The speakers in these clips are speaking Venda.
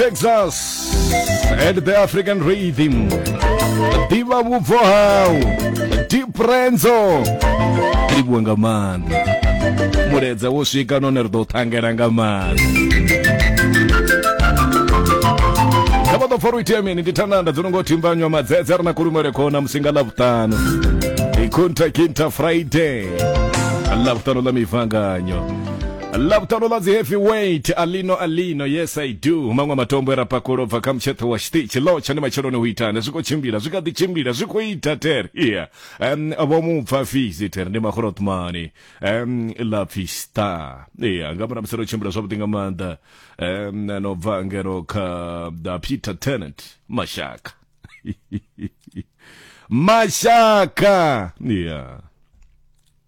Texas and the African Rhythm Diva vhubvo hau Deep Renzo livhuwe nga maanḓa muledza wo swika none ri ḓo ṱhangela nga maanḓa kha vha ḓo pfa ro itea mini ndi thananda dzo no ngo thimbanywa madzedze ri na kulumele khona musinga ḽa vhuṱanu ikhunta kinta friday ḽa vhuṱanu ḽa mivanganyo lavutano la dzi heavyweight alino alino yes i do maṅwe matombo e ra pakulo bva kha mutsheṱho wa xitichi lotsha ni matsheloni u itana zwi khou tshimbila zwi kha ḓi tshimbila zwi khou ita ter iya um, vho mu pfa fisi ter ndi makhorothmani um, la pfi star iya nga mura musi ro tshimbila zwavhuḓi nga maanḓa um, no bva ngeno kha da peter tenant mashaka mashaka iya yeah.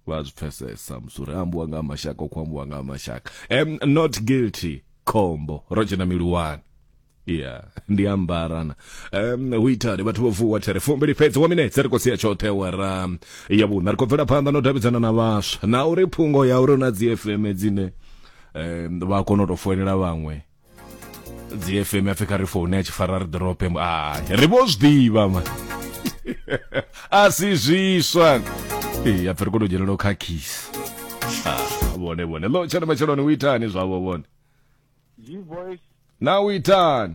vha zwi pfesesa musi uri ambiwa nga mashaka u khou ambiwa nga mashaka am not guilty khombo ro dzhena miluwani ya ndi ambarana um, hu itani vhathu vho vuwa there fumbili fhedzi wa minetse ri khou sia tshoṱhe wara ya vhuṋa ri khou bvela phanḓa no davhidzana na vhaswa na uri phungo ya uri na dzi fm dzine um, vha kona u tou foinela vhaṅwe dzi fm ya pfi kha ri foune ya tshifara ri ḓorope a ri vho zwi ḓivha ma a si zwiswa ee ya pfi ri kone u dzhelela u khakhisa vhone vhone lo tshone matsheloni u itani zwavho vhone G-Voice na u itani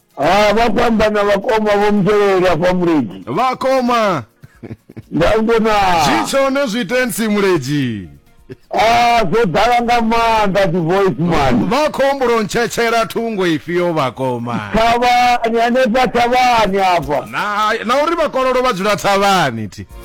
ha vha khou amba na vhakoma vho mutevheli afha mulezi vhakoma ndango na zwi tshone zwi tensi mulezi a zwo ḓala nga maanḓa dzi voice man vha khombulo ntshetshela thungo ifhio vhakoma thavhani hanefha thavhani afha na, na uri vhakololo vha dzula thavhani thi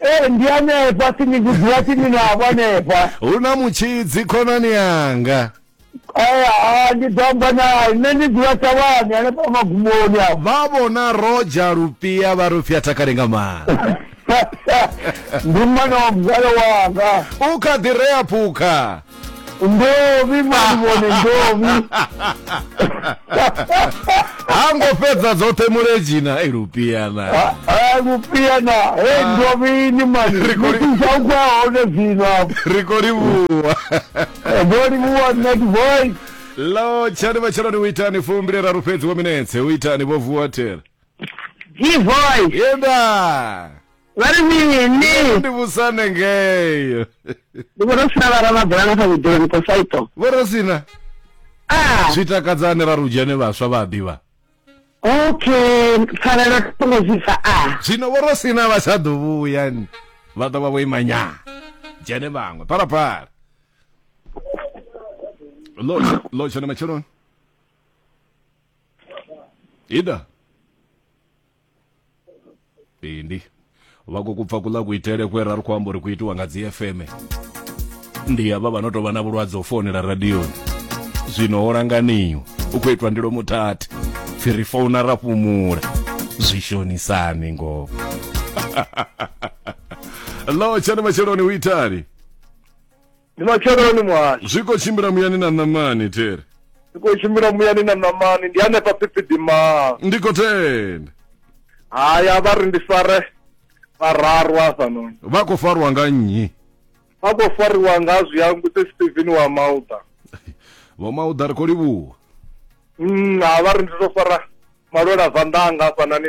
ee ndi hanefha tsini kudziwa tsini navho hanefha hu na mutshidzi khonani yanga ee ha ndi ḓo amba naye nṋe ndi dzula thavhani hanefha magumoni apo vha vhona roja lupia vha rufia takale nga maanḓa ndi mwana wa mzalo wanga u kha ḓi rea phukha ndovi mani vhone ndovi ha ngo fhedza dzoṱhe muledzina e lupiana Ah, ah, lupiana he ndovi ni mani Ri khou li- mitisaukwa hone zwino apo ri khou livhuwa ndo livhuwa net voice lo tshani vha tsheloni u itani fumbileraru fhedzi wo minetse u itani vho vuwa tere G-Voice, yenda vari mini? ndi vhusane ngeyo Ndi vhona u sina vhara mabula na kha vhudele mukosaito. vho ro sina Ah, zwi takadzani ra rudzhane vhaswa vha ḓivha okay, pfarelo tongo zwipfa ah. zwino vho ro sina vha tsha ḓo vhuya ni vha ḓo vha vho ima nya dzhene vhaṅwe phalaphala lo lo tshone matsheloni ida bindi vhako kubva kuḽa kuitele kwe ra ri khou amba uri ku itiwa nga dzi fm ndi havha vha no tou vha na vhulwadze u founela radioni zwino ho langaniwa u khou itwa ndilo muthathi pfi ri founa ra fhumula zwi shonisani ngoho lo tshani matsheloni u itani ndi matsheloni muhasho zwi khou tshimbila muyani na ṋamani there ndi khou tshimbila muyani na ṋamani ndi hanefha phiphidimaa ndi khou tenda haya vha ri ndi fare vhararu hafhanoni vha khou farwa nga nnyi vha khou fariwa nga zwiyangu tse steven wa mauda vho mauda ri khou livhuwa Mm, ha vha ri ndi to fara malwela vandanga hafhanani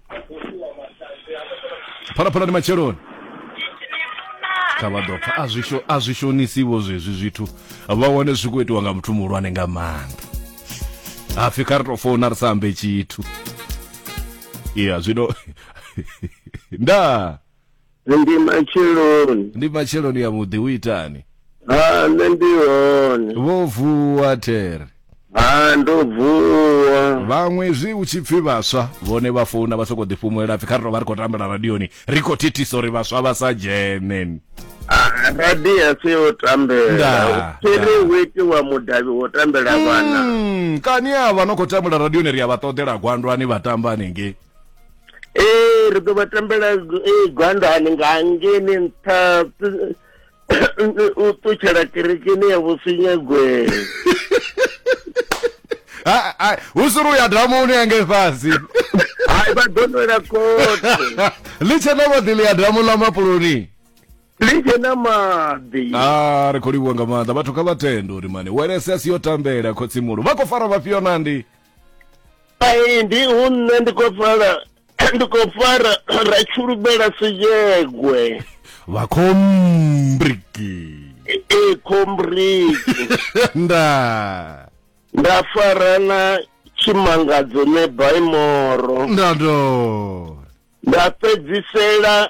phalaphala ndi matsheloni kha vha ḓo pfa a zwi sho- a zwi shonisiwo zwezwi zwithu vha wane zwi khou itiwa nga muthu muhulwane nga maanḓa hapfi kha ri tou founa ri sa ambe tshithu iya zwino ndaa Ndi matsheloni. Ndi matsheloni ya vhuḓi u itani? Ha nṋe ndi hone. Vho vuwa there. Ha ndo vuwa. Vhaṅwe zwi u tshi pfi vhaswa vhone vha founa vha soko ḓi fhumulela pfi kha ri tovha ri khou tambela radioni ri khou thithisa uri vhaswa vha sa dzhene. Radi a si yo tambela. Tshiri hu itiwa mudavhi wo tambela vhana. Hmm, kani avha no khou tambela radioni ri a vha ṱoḓela gwandwani vha tamba hanengei. ee ri ḓo vha tambela ee gwandani nga ngeni nṱha u ṱutshela kerekeni ya vhusinyagwe hu suri u ya damuni yange fhasi hai vha ḓo nwela khothe ḽi tshe na vhaḓi ḽi ya damu ḽa mapuloni litshe na maḓi a ah, ri khou livhuwa nga maanḓa vhathu kha vha tende uri mani welese a si yo tambela khotsimulo vha khou fara vhafhio nandi Hai ndi hu nṋe ndi khou fara ndi khou fara ra tshulumela siyegwe. Vha khombriki. E khombriki. Nda. Nda fara na tshimangadzo ne baimoro. Nda do. Nda fhedzisela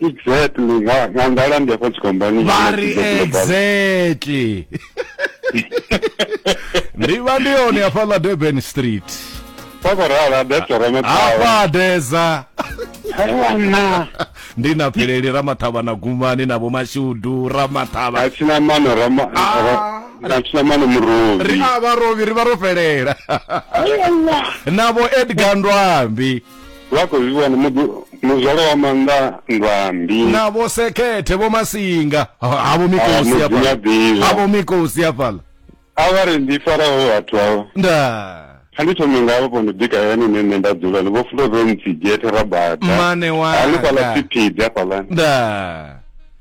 exactly nga nga ngala ndi afha tshikombani vhari exactly ndi vha ndi hone hafhaḽa durban street kwakorala desa ramathawa desa aiwana ndi na pheleli ramathavha na gumani na vhomashudu ramathavha athina mano athina ah. mano murovi ri a vharovi ri vha ro fhelela navho edgar ndwambi vha khou zwi vhona muḓi- muzwala wa maanḓa nndwambi na vho sekhethe vho masinga Ha- havho mikosi Ah, hafhala mudzinyadzivha. havho mikosi hafhala a vha ri ndi faraho vhathu avho nda kha ndi thome ngavho vho ndo bika yani ine nṋe nda dzula ni vho fulo ro ntsigethe ra bada mane hanefhaḽa wanga tshiphidi hafhaḽani nda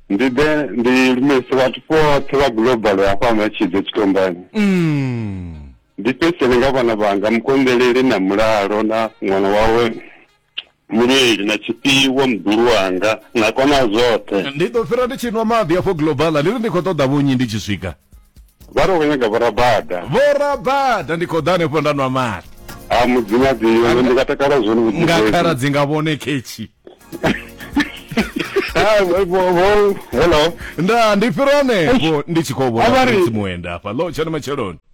ndi ḓe ndi lumelise vhathu vhoṱhe vha global hafha matshidze tshitombani Mm. ndi fhedzisele nga vhana vhanga mukonḓeleli na mulalo na ṅwana wawe muleli na tshifhiwo muḓulu wanga na kona zwoṱhe ndi ḓo fhira ndi tshi nwa maḓi afho global ndi ri ndi khou ṱoḓa vhunyi ndi tshi swika vha ri khou nyaga vhorabada vhorabada ndi khou ḓa hanefho nda nwa maḓi a mudzimadzio ndi nga takala zwone nga khala dzi nga vhone khetshi hello nda ndi fhira hanefho ndi tshi khou vhona mudzimu wenda hafha lo tshone matsheloni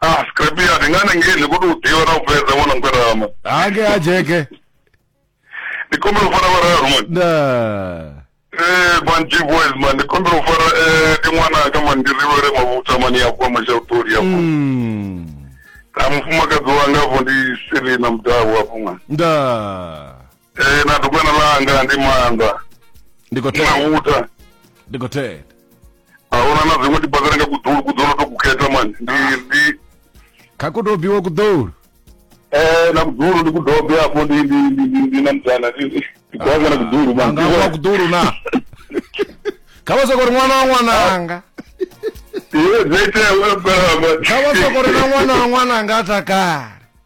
Ah, scrap ya ndi ngani ngei ndi khou tou ḓivha na u fhedza ṅwana mugwadama. hange ha jeke Ndi kombela u fara vhararu man. nda Eh, man G boys man, ndi kombela u fara eh ndi ṅwana anga man ndi rivhele mavhutha man ya kwa mashauṱoli ya kwa. Mm. Na mufumakadzi wanga vho ndi Selina Mudau afho man. nda Eh, na dugwana langa ndi maanḓa ndi khou na tea muta ndi khou tea ahuna na dziṅwe tibazana nga kuḓulu kuḓulu to kukhetha mani ndi ndi kha ku tou biwa kuḓulu eh na kuḓulu ndi kudobe afho ndi ndi ndi ndi ndi na mutana ndi ndi kwaza na kuḓulu mani anga wa kuḓulu na kha vha soko ri ṅwana wa ṅwananga iwe dzete wewe kha vha soko ri na ṅwana wa ṅwananga a takale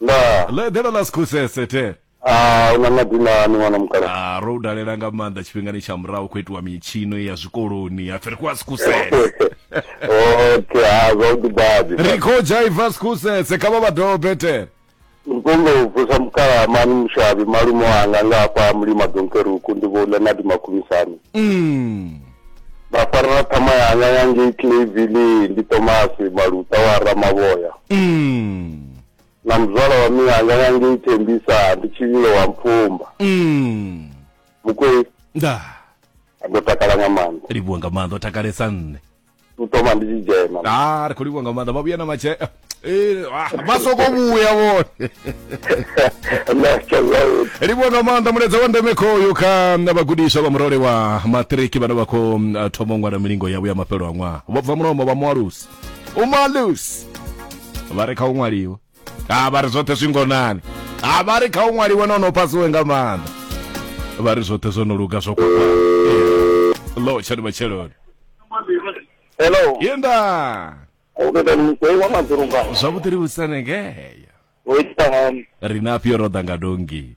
ndaa ḽe ḓela ḽa sikhusese the Ah, u na madinani ṅwana mukala Ah, ro u dalela nga maanḓa tshifhingani tsha murahu khou itiwa mitshino ya zwikoloni hapfi ri khou a sikhusese okay ha zwavhuḓi badi ri khou dzhaiva sikhusese kha vha vha dobe the ndi khou nga u vusa mukala mani mushavhi malume wanga nga hafha mulima donkeruku ndi vho leonard makhumisani Mm. nda farela ṱhama yanga ya ngei clavili ndi tomasi maluta wa ramavhoya mm. na muzwala wa miyanga ya ngei thembisa ndi tshivhilo wa mpfumba mm. mukwei nda ndo takala nga maanḓa livhuwa nga maanḓa o takalesa nṋe u thoma ndi tshi dzhena ha ah, ri khou livhuwa nga maanḓa vha vhuya na matshea eh, ah, vha soko vhuya vhone livhuwa nga maanḓa mulaedza wa ndeme khoyo kha na vhagudiswa vha murole wa matriki vhane vha khou mm, thoma u ṅwala milingo yavho ya mafhelo a ṅwaha vho bva mulomo vha mualusi umalusi vha re kha u ṅwaliwa ha vha ri zwoṱhe zwi ngonani ha vha ri kha u ṅwaliwe na ono pasiwe nga maanḓa vha ri zwoṱhe zwo no luga zwo kwakwa lo tshani matsheloni Hello. yenda Ubeda mkwe wa madhurunga. zwavhuḓi ri vhusanengeya Wita ngani. ri na afhio ro ḓa nga dongi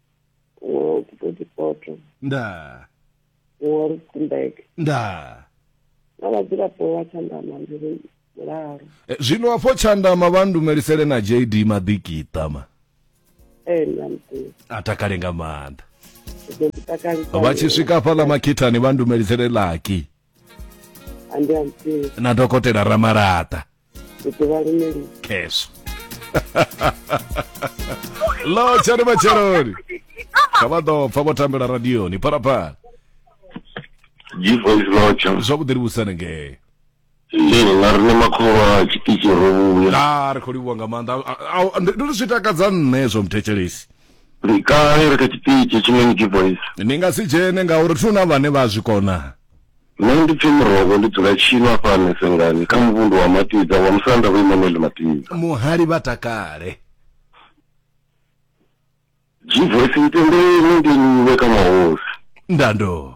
Wo Body Poto, ndaa wo Rustenburg ndaa na vhadzulapo vha Tshandama ndi ri mulalo. Eh, zwino afho tshandama vha ndumelisele na jd maḓikiṱa ma Ee nṋa muḓivhi, a takale nga maanḓa ndi ḓo ḓi takalisa. vha tshi swika hafhaḽa makhithani vha ndumelisele laki andiansi na dokotela ramalaṱa ndiḓivha luneli khesho lo tshani matsheloni kha vha ḓo pfa vho tambela radioni phalaphala G-Voice Lodge. zwavhuḓi livhusani ngee Ee, nga riṋe makhoro a tshiṱitshi ro vhuya. a ri khou livhuwa nga maanḓa A- a- a- ndi ndi zwi takadza nṋe zwo mthetshelesi ndi kale ri kha tshiṱitshi tshine ni voice ni nga si dzhene ngauri thi na vhane vha zwi kona nṋe ndi pfi murogo ndi dzula tshino afha mesengani kha muvhundu wa matidza wa musanda vho imanuel matidza muhali vha takale jivoice itendeni ndi iwe kha mahosi ndando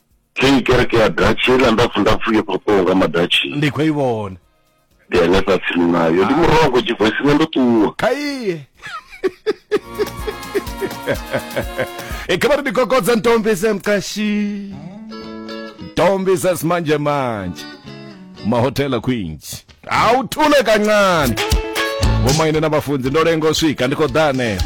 Kei kereke ya Dutch heiḽa ndapfu ndapfu yo fhaṱwaho nga madatshi. Ndi khou i vhona. Ndi hanefha tsini nayo. Ndi murongo tshivoisini ndo ṱuwa. Kha iye. E kha vhari ndi kokodza ntombi se mqashi. Ntombi sa simanje manje. Mahotela kwinji. Hawu thule kancane. Vhomaine na vhafunzi ndo lenga u swika ndi khou ḓa hanefha.